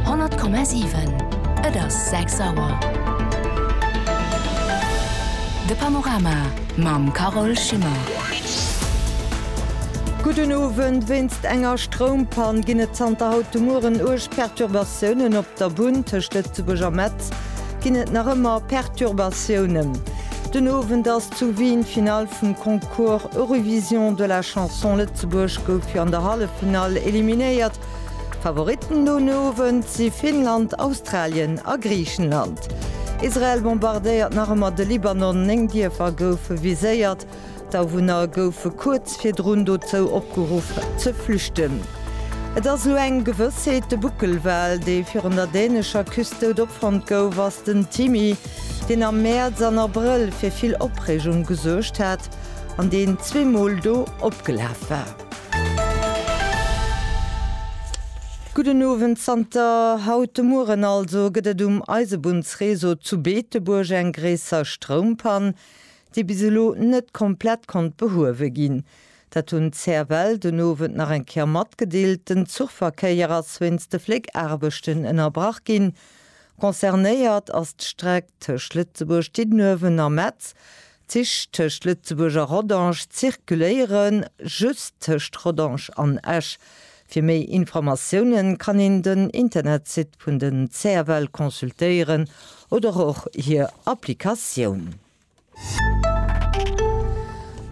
100,7 Et ass 6 Auer. De Panorama mam Carole Schimmer. Gudden Owend, Wéinst enger Stroumpann ginn et zanter haut de Mueren uerg Perturbatiounen op der Bunn. Tëscht Lëtzebuerg a Metz ginn et nach ëmmer Perturbatiounen den Owend. Zu Wien, Finale vum Concours Eurovision de la Chanson, Lëtzebuerg gouf jo an der Halleffinall eliminéiert. Favoritten den Owend si Finnland, Australien a Griichenland. Israel bombardéiert nach ëmmer de Libanon, néng Dierfer goufe viséiert. D'Awunner goufe kuerz virdrun dozou opgeruff ze flüchten. Et ass elo eng Gewëssheet, de Buckelwal, dee virun der dänescher Küst dout opfonnt gouf, ass den Timmy. deen am Mäerz an Abrëll fir vill Opreegung gesuergt hat an deen zwee Mol do opgelaf war. Gudden Owend, Zanter haut de Mueren also gëtt et um Eisebunnsreseau zu Beetebuerg eng gréisser Stroumpann, déi bis elo net komplett konnt behuewe ginn. Dat hunn d'CFL den Owend nach eng Kéier matgedeelt. Den Zuchverkéier ass wéinst de Fléckaarbechten ënnerbrach ginn, Concernéiert ass d'Streck tëscht Lëtzebuerg, Diddenuewen a Metz. D'Zich tëscht Lëtzebuerg a Rodange zirkuléiere just tëscht Rodange an Esch. Fir méi Informatioune kann een den Internetsite vun den CFL consultéieren oder och hir Applikatioun.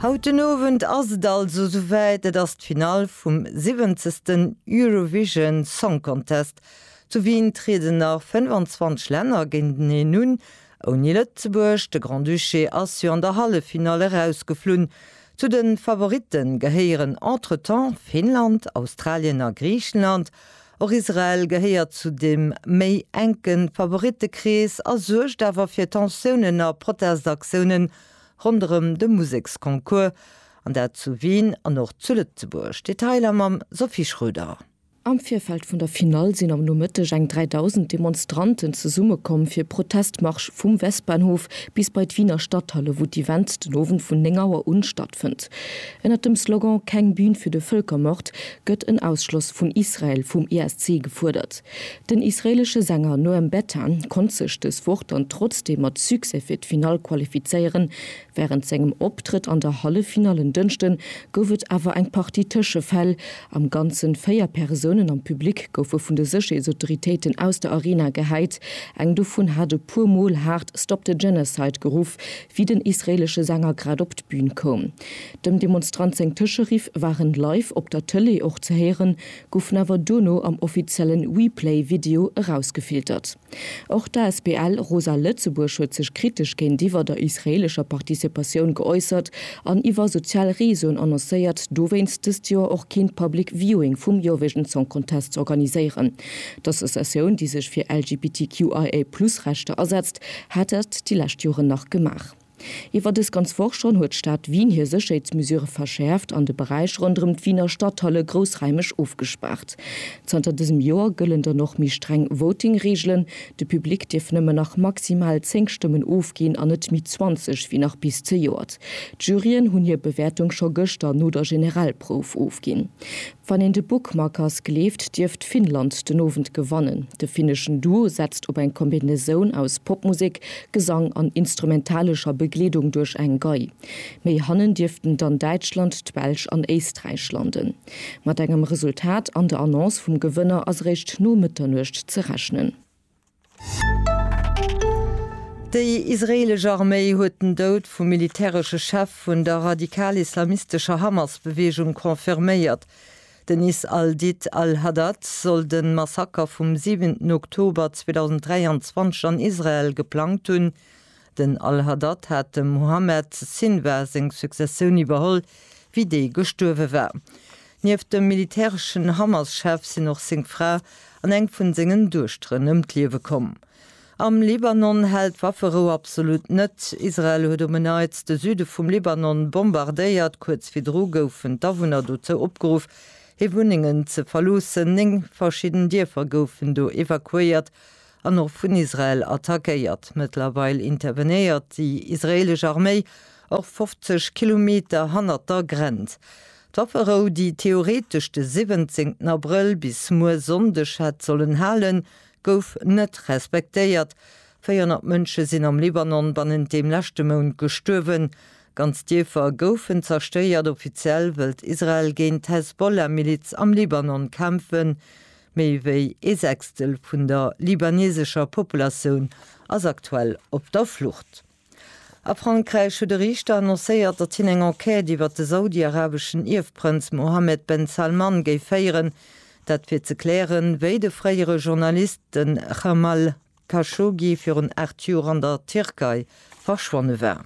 Haut den Owend ass et also souwäit, Et ass d'Finall vum siwwenzegsten Eurovision Song Contest. Zu Wien trieden nach 25 Länner géinteneen un, ouni Lëtzebuerg. De Grand-Duché ass jo an der Halleffinall erausgeflunn. Zu de Favoritte gehéieren entretemps Finnland, Australien a Griichenland. Och Israel gehéiert zu dem méi enken Favorittekrees a suergt awer fir Tensiounen a Protestaktiounen ronderëm de Museksconcours, an dat zu Wien an och zu Lëtzebuerg. Detailer mam Sophie Schroeder. Am Virfeld vun der Finall sinn am Nomëtteg eng 3.000 Demonstranten zesummekomm fir Protestmarsch vum Westbahnhof bis bei d'Wiener Stadthalle, wou d'Event den Owend vun 9 Auer un stattfënnt. Ënnert dem Slogan Keng Bühn für de Völkermord gëtt en Ausschloss vun Israel vum ESC gefuerdert. Den israeelesche Sänger Noam Betan konnt sech dës Woch dann trotzdeem mat Succès fir d'Finall qualifizéieren. Wärend sengem Optrëtt an der Halleffinall en Dënschde gouf et awer eng Partie Tëschefäll. Am Ganze véier Persounen am Public goufe vun de Sécherheetsautoritéiten aus der Arena gehäit. Eng dovun hat e puer Mol haart Stop the Genocide geruff, wéi den israeelesche Sänger grad op d'Bün koum. Dem Demonstrant seng Tëscheriff waren live op der Tëlee och ze héieren, goufen awer duerno am offiziellen WePlay Video erausgefiltert. Och d'ASBL Rosa Lëtzebuerg huet sech kritesch géintiwwer der israeelescher Participatioun geäussert an iwwer sozial Reseauen annoncéiert, dowéinst dëst Joer och keen Public Viewing vum Eurovision Song Contest z'organiséieren. D'Associatioun, déi sech fir LGBTQIA+ Rechter asetzt, hat dat déi lescht Joren nach gemaach. Iwwer dës ganz Woch schonn huet d'Stad Wien hir Sécherheetsmesurë verschäerft an de Beräich ronderëm d'Wiener Stadthalle groussraimeg ofgespaart. Zanter dësem Joer gëllen dann och méi streng Voting-Reegelen, De Public dierf nëmmen nach maximal 10 Stëmmen ofginn an net méi 20 wéi nach bis zejoert. D'Juryen hunn hir Bewäertung scho gëschter no der Generalprouf ofginn. Wann een de Bookmakers gleeft, dierft Finnland den Owend gewannen. De finneschen Duo setzt op eng Kombinatioun aus Popmusek, Gesang an instrumentalescher Begleedung duerch eng Gei. Méi hannen dierften dann Däitschland, d'Belsch an Éisträich landen. Mat engem Resultat an der Annonce vum Gewënner ass eréischt no Mëtternuecht ze rechnen. Déi israeelesch Arméi huet den Doud vum militäresche Chef vun der radikal-islamistescher Hamas-Beweegung confirméiert. Den Is al-Did al-Haddad soll de Massaker vum siwenten Oktober 2023 an Israel geplangt hunn, Den al-Haddad hat dem Muhammad Sinwar seng Successioun iwwerholl, wéi dee gestuerwe war. Nieft dem militäreschen Hamas-Chef sinn och seng Fra an eng vun sengen Duechteren ëm d'Liewe komm. Am Libanon hält Wafferou absolut net. Israel huet um Menaitz de Süde vum Libanon bombardéiert. Kuerz virdru goufen d'Awunner dozou opgeruff, hir Wunnengen ze verloossen. Néng verschidden Dierfer goufen do evakuéiert, an och vun Israel attackéiert. Mëttlerweil intervenéiert déi israeelesch Arméi och 50 Kilometer hannert der Grenz. D'Wafferou, déi theoretesch de 17 Abrëll bis muer Sonndeg hätt sollen halen, gouf net respektéiert. 400 Mënsche sinn am Libanon bannent deem leschte Mount gestuerwen. Ganz Dierfer goufen zerstéiert. Offiziell wëllt Israel géint d'Hezbollah-Miliz am Libanon kämpfen. Méi wéi ee Sechstel vun der libanesescher Populatioun ass aktuell op der Flucht. A Frankräich huet e Riichter annoncéiert, datt hien eng Enquête iwwer de saudi-arabeschen Ierfprënz Mohammed Ben Salman géif féieren, dat fir ze klären, wéi de fréiere Journalist, de Jamal Khashoggi, virun 8 Joer an der Tierkei verschwonne war.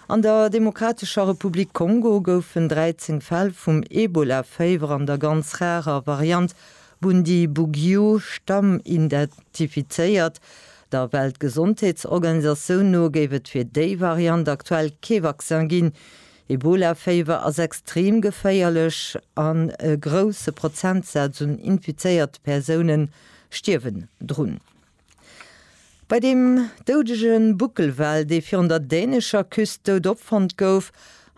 An der Demokratescher Republik Kongo goufen 13 Fäll vum Ebola-Féiwer an der ganz rarer Variant Bundibugyo Stamm identifizéiert. Der Weltgesondheetsorganisatioun no géif et fir déi Variant aktuell kee Vaccin ginn. Ebola-Féiwer ass extrem geféierlech an e grousse Prozentsaz un infizéierte Persoune stierwen drun. Bei deem doudege Buckelwal, dee virun der dänescher Küst dout opfonnt gouf,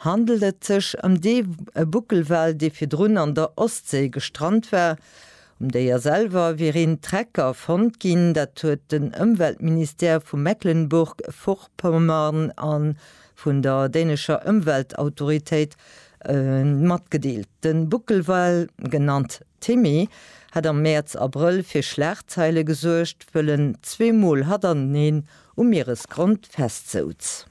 handelt et sech ëm dee Buckelwal, dee virdrun an der Ostséi gestrant war. Um Déier selwer wier een Trecker fonnt ginn. Dat huet den Ëmweltministère vu Mecklenburg-Vorpommern a vun der dänescher Ëmweltautoritéit matgedeelt. De Buckelwal, genannt Timmy hat am Mäerz, Abrëll fir Schlagzeile gesuergt, wëll en zwee Mol hatanteneen um Mieresgrond festsouz.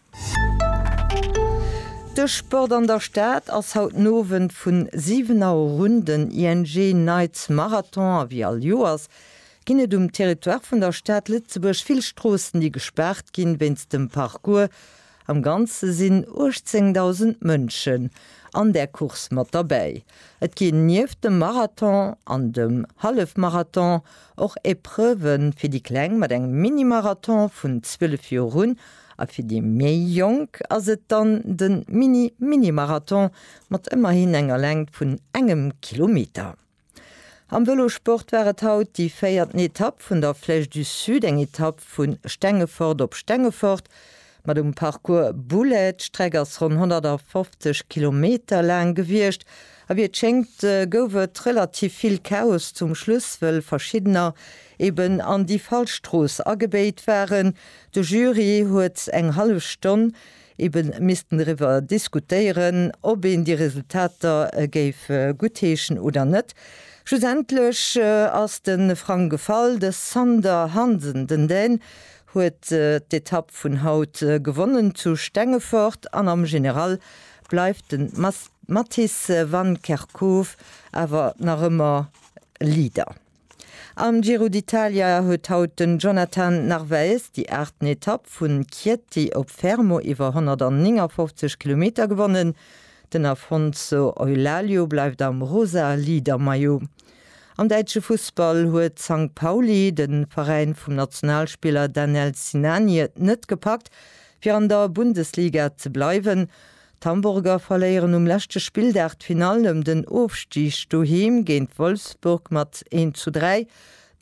De Sport an der Stad ass haut den Owend vun 7 Auer erun den ING Nights Marathon a wéi all Joers ginn et um Territoire vun der Stad Lëtzebuerg vill Stroossen, déi gespaart ginn wéinst dem Parcours. Am Ganze sinn 18.000 Mënschen an där Course mat derbäi. Et ginn nieft dem Marathon an dem Hallefmarathon och Epreuve fir déi Kleng mat engem Mini-Marathon vun 12 Joer un a fir déi méi Jonk ass et dann de Mini-Mini-Marathon mat ëmmerhin enger Längt vun engem Kilometer. Am Vëlosport war et haut déi véierten Etapp vun der Flèche du Sud, eng Etapp vu Stengefort op Stengefort mat um Parcours Boulay. D'Streck ass ronn 150 Kilometer laang gewiescht a wéi et schéngt gouf et relativ vill Chaos zum Schluss, wëll verschiddener eben an déi falsch Strooss agebéit waren. De Jury huet eng hallef Stonn Ebe missten doriwwer diskutéieren, ob een déi Resultater géif guttheeschen oder net. Schlussendlech ass de Frang gefall. De Sander Hansen, den Dän, huet d'Etapp vun haut gewonnen zu Stengefort an am General bleift de Mattis van Kerckhove awer nach ëmmer Leader. Am Giro d'Italia huet haut den Jonathan Narvaez déi aachten Etapp vun Chieti op Fermo iwwer 159 Kilometer gewonnen. Den Afonso Eulaglio bleift am rosa Leader-Maillot. Am däitsche Fussball huet Sankt Pauli, de Veräin vum Nationalspiller Danel Sinani, et net gepackt fir an der Bundesliga ze bleiwen. D'Hamburger verléieren um leschte Spilldag d'Finall ëm den Ofstig doheem géint Wolfsburg mat 1 zu 3.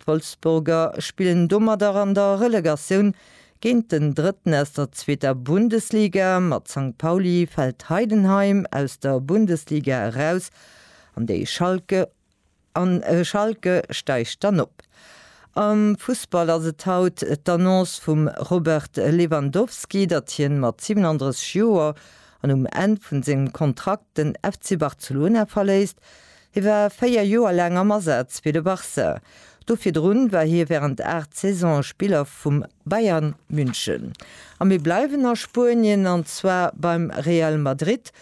D'Wolfsburger spillen domadder an der Relegatioun géint den Drëtten aus der zweeter Bundesliga. Mat Sankt Pauli fält Heidenheim aus der Bundesliga eraus an déi Schalke A Schalke steigt dann op. Am Fussball ass et haut d'Annonce vum Robert Lewandowski, datt hien mat 37 Joer an um Enn vun sengem Kontrakt den FC Barcelona verléisst. Hie war 4 Joer laang am Asaz fir de Barça. Do virdrun war hie während 8 Saisone Spiller vum Bayern München. A mir bleiwen a Spuenien an zwar beim Real Madrid.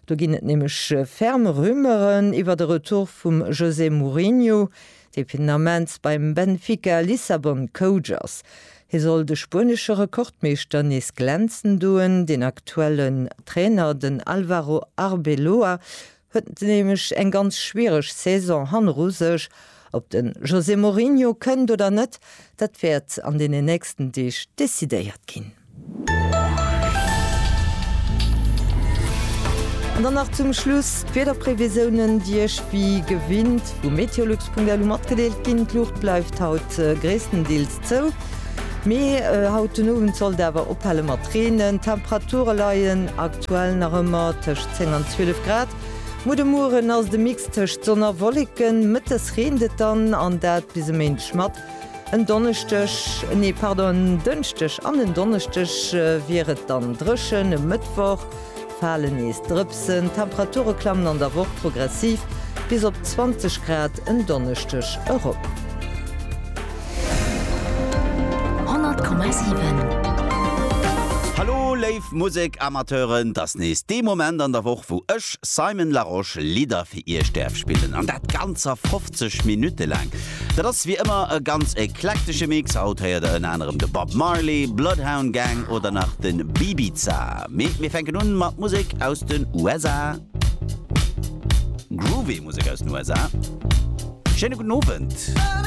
Do ginn et nämlech ferm Rumeuren iwwert e Retour vum José Mourinho, dee fir den Ament beim Benfica Lissabon Coach ass. Hie soll de spuenesche Rekordmeeschter nees glänzen doen. Deen aktuellen Trainer, den Alvaro Arbeloa, huet nämlech eng ganz schwiereg Saison hanneru sech Ob de José Mourinho kënnt oder net, dat wäert an deenen nächsten Deeg decidéiert ginn. An dann nach zum Schluss d'Wiederprevisiounen, déi Iech wéi gewinnt vu meteolux.lu matgedeelt ginn. D'Luucht bleift haut gréisstendeels zou, mee haut den Owend sollt awer ophale mat reenen. D'Temperature leien aktuell nach ëmmer tëscht 10 an 12 Grad. Mo de Mueren ass et e Mix tëscht Sonn a Wolleken, Mëttes reent et dann, an dat bis e Méindeg mat. En Donneschdeg, nee pardon, en Dënschdeg an en Donneschdeg wier et dann dréchen, e Mëttwoch fale nees Drëpsen. D'Temperature klammen an der Woch progressiv bis op 20 Grad en Donneschdeg erop. 100,7. Hallo léif. Musek Amateuren, t'ass nees dee Moment an der Woch wou ech, Simon Larosche, Lidder fir iech däerf spillen an dat ganzer 50 Minutte laang. Dat ass wéi ëmmer e ganz eklektesche Mix, haut héiert der ënner anerem de Bob Marley, Bloodhound Gang oder nach de Bibiza. Mee mir fänken un mat Musek aus den USA. Groovy Musek aus den USA. Schéine gudden Owend.